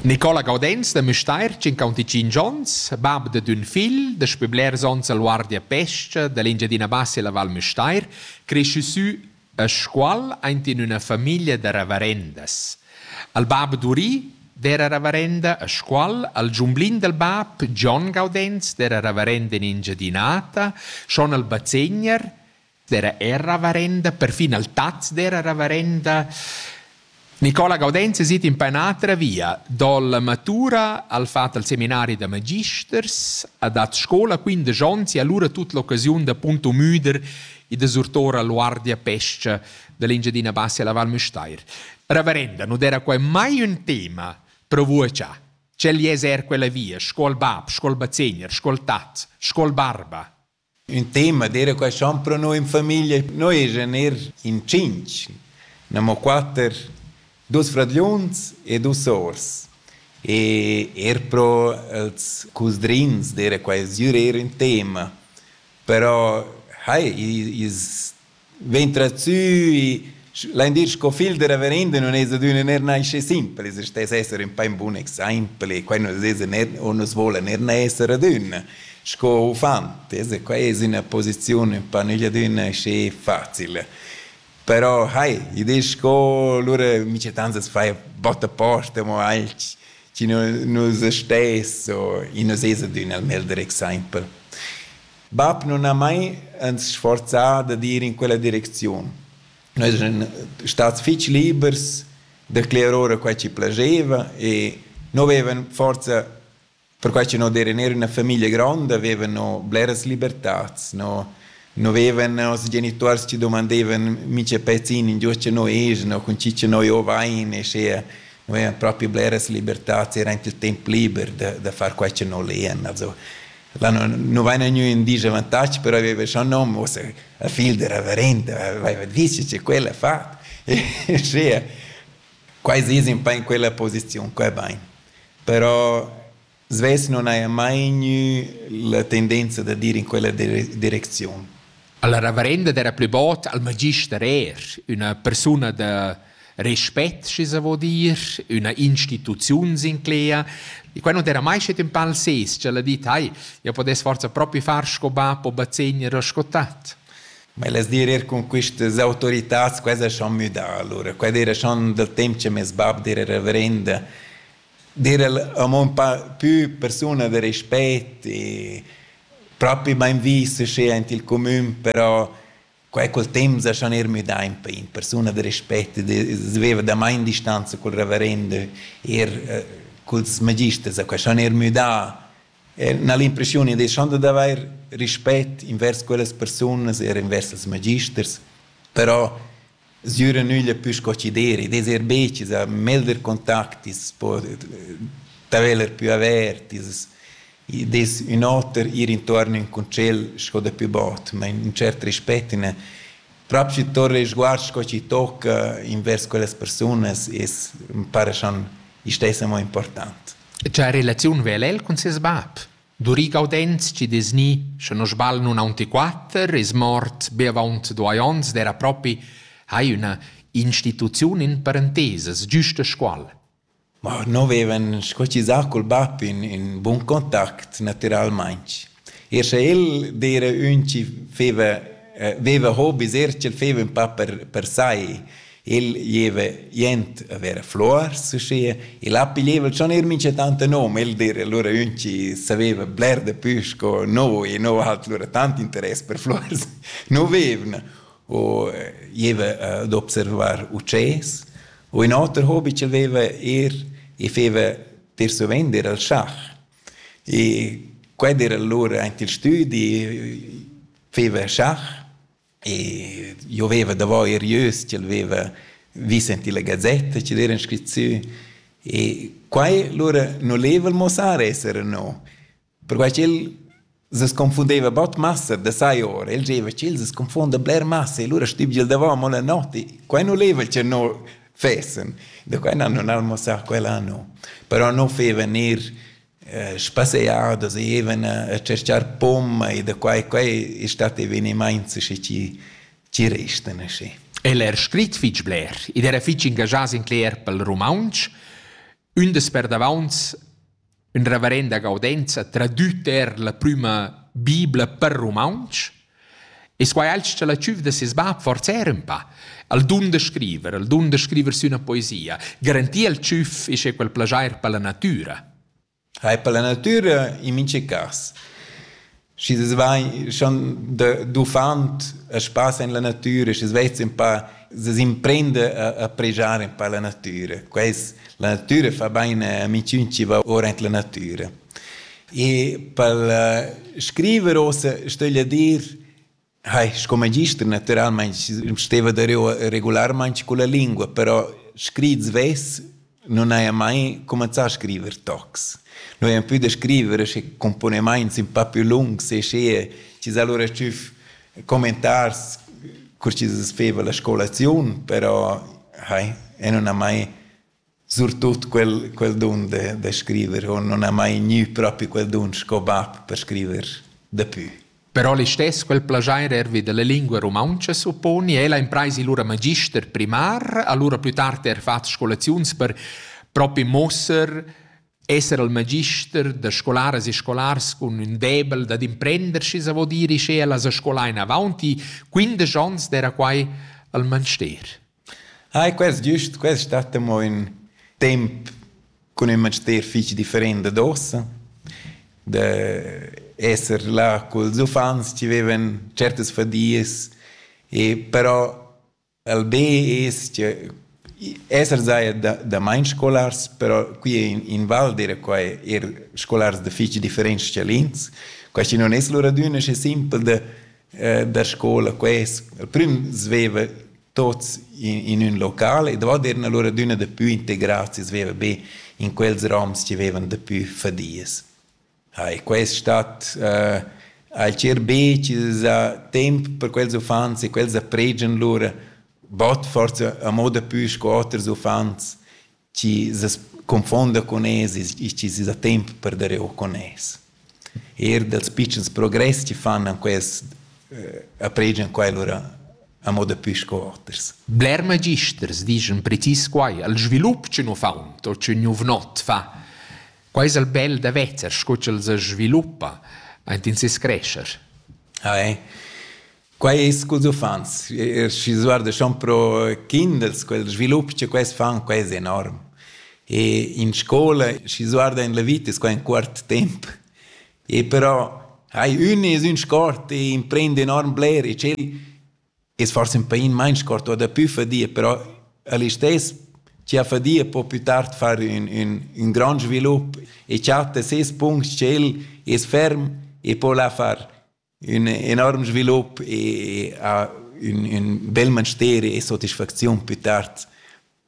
Nicola Gaudenz da Müstair, 55 onns, bab da d'ün figl, daspü blers ons a Luardia Pesca, da l'Engiadina Bassa e la Val Müstair, cresciü sü a Scuol aint in üna famiglia da ravarendas. Al bab Duri d'era ravarenda a Scuol, al giumblin dal bab Gian Gaudenz d'era ravarenda in Engiadinata, schon al bazegner dera era ravarenda, perfin al taz dera ravarenda. Nicola Gaudenz sit in pa un'altra via, dalla matura al fat al seminari da magisters, ha dat scola 15 onns e allora tut l'occasiun da punto müder e da surtora l'uardia pesca dell'Engiadina Bassa alla Val Müstair. Ravarenda, non era qua mai un tema per voi già. Cel es er quella via, scuol bab, scuol bazegner, scuol tat, scuol barba. Ün tema d'eira quaist on pro noi in famiglia. Noi eschan eir in tschinch, gnammo quatter, duos fradgliuns e duos sours. E eir pro els cusdrins d'eira quaist dür eir ün tema. Però hai, i's vegn trazzui L'endir sco fil de reverenda non es adüna ner nasce simpel, es stes esser in pein bun exempel e quai nus es ner o nus vola ner esser adüna sco uffant, es qua es üna posizione pa nügl adüna schi facil. Però hai, i disch sco lura mi c'è tantas fai botta posta mo alch chi nus stes o i nus es adüna il meglder exempel. Bab nun ha mai ans sforzà dad ir in quella direcziun. Noi eran stats fich libers da cler ora quai chi plascheva e no vevan forsa perquai cha no d'eran eir üna famiglia gronda, vevan no bleras libertats, no no vevan noss genituors chi dumandevan mincha pezin in giò scha no es, no cun chi cha noi ho vain e schea no vevan propi bleras libertats, era aint il temp liber da da far quai cha no lean. Also Là nu vaina gnü ün dis avantag, però aveva scho nom, uossa la figl da reverenda aveva dis che quella ha fat. Sche quai es ün pa in quella posiziun qua bain. Però svess non haja mai gnü la tendenza da dir in quella direcziun. Alla reverenda d'era plü bod al magister eir üna persuna da respect schi sa vo dir üna instituziun sinclea e quai non era mai schet ün pal ses ch'el ha dit hai io podess forza propi far sco bap o bazegner o sco tat Ma elas dir ir cun quistas autoritats quai es schon müdà alura. Quai d'eira schon dal temp cha meis bap d'eira reverenda. D'eira amo ün pa pü persuna da respet e propi main vis uschè aint il cumün, però Quei cul temps ha schon er müdà in pei in persuna da respect e veva da main distanza cul reverendo er eh, culs magisters, ha schon er müdà na l'impressione di schon da avair rispett invers quellas persunas er invers els magisters, però Sgüra nüglia pü sco chi deri, ed es eir be chi sa melder contactis, po d'haveler pü avertis, id es ün oter ir intuorn ün concel sco dapü bod, ma ün tschert respet in el. Prop schi torna il sguard sco chi tocca invers quellas persunas es ün para cha istess amo important. E cha relaziun vela el cun seis bap? Duri Gaudenz chi dess gnir, sche non sbagl, nun aunc quatter, es mort be avaunt duai ons ed era propi hai üna instituziun in parentesas, giusta scuol. Ma no vevan squalchisà col bap in, in bun contact natüralmaing. Er sche el d'eira ün chi feva, eh, veva hobis, er ch'el feva ün pa per, per sai. Il gieva jent a ver fluors uschia. El ha piglieva schon eir mincha tant nom, el dir, lura ün chi saveva bler dapü sco no e no ha lura tant interess per fluors, no vevna. U gieva ad observar utschés. U ün oter hobi ch'el veva eir, i feva dir su vender al schach. E quel era lura aint il stüdi, feva schach E io veva davo er ieus, ch'el veva vis en la gazetta, ch'el era scrit sü. E quai lura non leva il mossar esser no, perquai ch'el se sconfundeva bot massa da sai ora, el diceva ch'el se sconfonda bler massa e lura stibgel davant mo la notti. Quai non leva che no fessen, da quai non han mossar quell'anno, però no feva ner spasear da zievena e tschercar pomma e da quai quai e stat evenimaints schi chi chi restan aschi. El era scrit fich bler ed era fich ingagià sin cler pel rumauntsch. Ün des perdavaunt ün reverenda gaudenza tradüt er la prüma bibla per rumauntsch E squai alch cha la tschüf da seis bap forsa era ün pa. El dun da scriver, el dun da scriver sü üna poesia. Garantir al tschüf isch è quel plaschair per la natüra. Hai per la natüra in minche cas. Schi das vai schon da d'uffant a spass in la natüra, schi's vez ün pa se s'imprende a, a pregiare un po la natura. Quest, la natura fa bene a amiciun ci va ora in la natura. E pel scriver uossa stögl dir, hai sco magister natüralmaing steva dareu regularmaing culla lingua, però scrit svess nun haja mai cumanzà a scriver tocs. Noi hain pü da scriver schi cumponemaints ün pa pü lungs e sche chi s'ha lura tschüf commentars cur chi's feva la scolaziun, però hai e nun ha mai surtut quel, quel dun de, de scriver o non ha mai gnü propi quel dun sco bab per scriver dapü. Però listess quel plagiair ervi della lingua romaunca supponi ella impraisi lura magister primar, allura plü tard er fat scolaziuns per propi mosser esser al magister da scolaras e scolars cun ün debel dad imprender schi sa vo dire sche ella sa scola in avanti 15 ans d'era quai al manster. Ai, quest giust, quest stat amo ün temp cun ün manster fich different dad uossa. Da esser là culs uffants chi vevan certas fadias, e però al be es che esser saja da damain scolars, però qui in Val d'eira quai eir scolars da fich differents schalins. Quai chi non es lur adüna schi simpel da da scola quest al prüm sveva tots in, in ün local e davo eran allura adüna dapü integrats e sveva be in quels roms chi vevan dapü fadias. Ha, e quest stat uh, ha il cher be chi za temp per quels uffants e quels appregian lura bod forza a moda pü sco oters uffants chi s'es confonda con es e chi s'es da temp per der eau con es. Eir dals pitschens progress chi fan an quest eh, apregian quai lura a moda pü sco oters. Bler magisters dischan precis quai, al svilup chi nu faun o chi nu vnot fa. Quai es al bel da vezer, sco ch'el sa sviluppa aint in ses crescher. Ah, eh. Quei ei sculs uffants. Schi s'uardeschan pro kinders, quel svilup che quels fan, quei es enorm. E in scola, schi s'uarda en la vita, es quai ün cuort temp. E però hai ün es ün sport e imprend enorm bler e tschel es forsa ün pain main sport o dapü fadia, però a listess chia fadia po plü tard far ün, ün, ün grand svilup e chatta ses punct tschel es ferm e po la far. ün enorm svilup e ha ün, ün bel mansteri e soddisfacziun più tard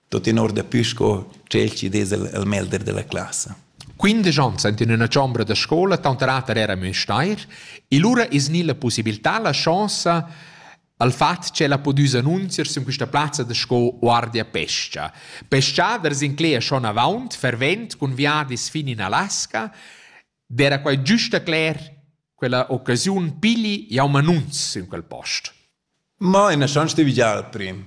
tuttina daplü sco tschel chi dess il, il melder della classa. Quindici onns ent in üna chombra da scola, tanterer era Müstair, e lura es gnida la possibilità, la chance al fat che la podüs annunzier sün quista plazza da sco guardia pesca. Pescaders incleia schon avant, fervent, cun viadis fin in Alaska, D'era quai giusta cler quella occasiun pigli jau m'annunz in quel post. Ma ina chance de vigiar prim.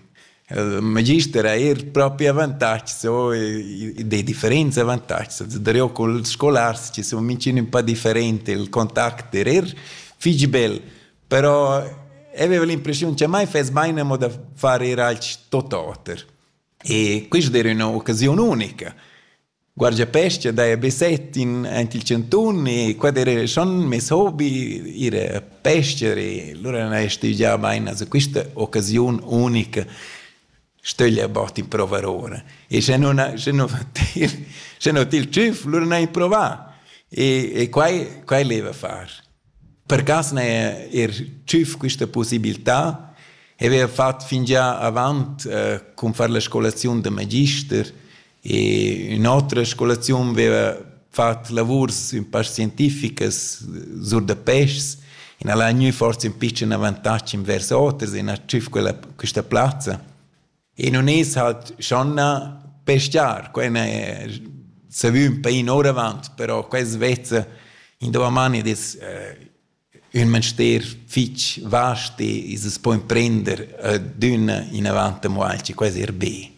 Il magister ha er propri avantatgs o de differents avantatgs. Darò col scolars che sun mincin un po different, il contact er er fich bel. Però avevo l'impressiun che mai fess mai amo da far er alch tot oter. E questa era üna occasiun unica. Guardiapescha daja be set in aint il chantun e quai d'eira schon meis hobi, ir a pester e lura n'haja stüdgià bain a quista occasiun unica stöglia bod improuvar oura. E sche nun sche nu fa til sche no til tschüf, lura n'haja improvà e e quai quai leva far. Per cas n'haja eir tschüf quista pussibiltà e vaiva fat fingià avant cun far la scolaziun da magister E ün'otra scolaziun veva fat lavurs ün pa scientificas sur da peschs e n'al ha gnü forsa ün pitschen avantag invers oters e n'ha tschüf quella, quista plazza. E nun es halt schon na peschiar, quella è savü ün pain ouravant, però questa vezza in dovamani ed es eh, ün manster fich vast e as po imprender adüna inavant amo alch, quai es eir be.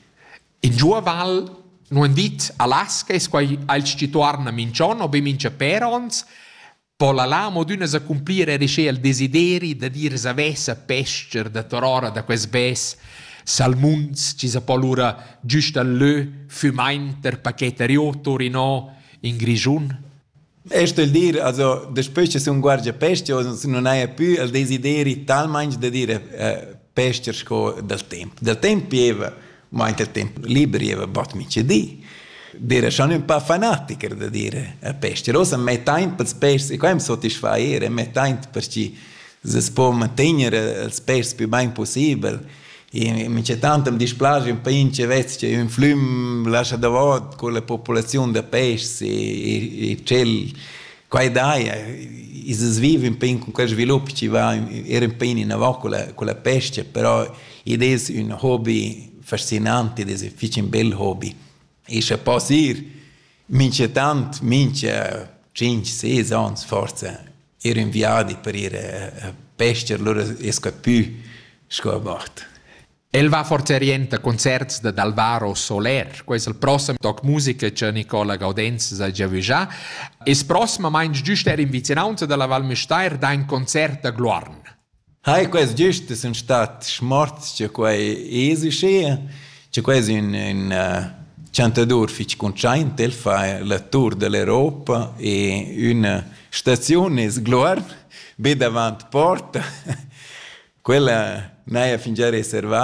In giua val nu han dit Alaska, es quai aint schi tuorna minch'on o be mincha pér ons, po la là amo adüna s'accumplir eir sche el desideri da dir savess a pes-cher da torora da quest bes salmuns chi sa po lura güst al lö fümaint der paquet a Rioto, Rinò, in Grischun? E stel dir, also, daspö cha sun guargia pescha o nun haja pü il desideri talmaing da dire eh, pescher sco dal temp. Dal temp gieva, ma anche il temp liber gieva bot mica di. Dire schon un po' fanatiker da dire a pescher. Ossa mai taint pels pes, e qua am sotisfair, è mai taint per chi se po mantegner els pes più bain possibel. Minchatant am displaja ün pain chi vez cha ün flüm lascha davot culla populaziun da peschs e e tschel quai daja. I es viv ün pain cun quel svilup chi va eir ün pain inavant culla culla pescha, però id es ün hobi fascinant, id es fich ün bel hobi. E scha poss ir minchatant mincha tschinch, ses ans forsa ir in viadi per ir a pester, lura es capü sco a mort. El va forza rienta concerts da d'Alvaro Soler, quais il prossem toc musica che Nicola Gaudenz sa già vigià, es prossimamaing giüst er in vicinanza dalla Val Müstair da in concert da Gluarn. Hai, quels giust sun stat schmorts cha quai es uschea, cha quai es ün ün chantadur fich cuntschaint, el fa la tour da l'Europa e üna staziun es Gluorn, be davant porta, quella n'haja fingià reservà.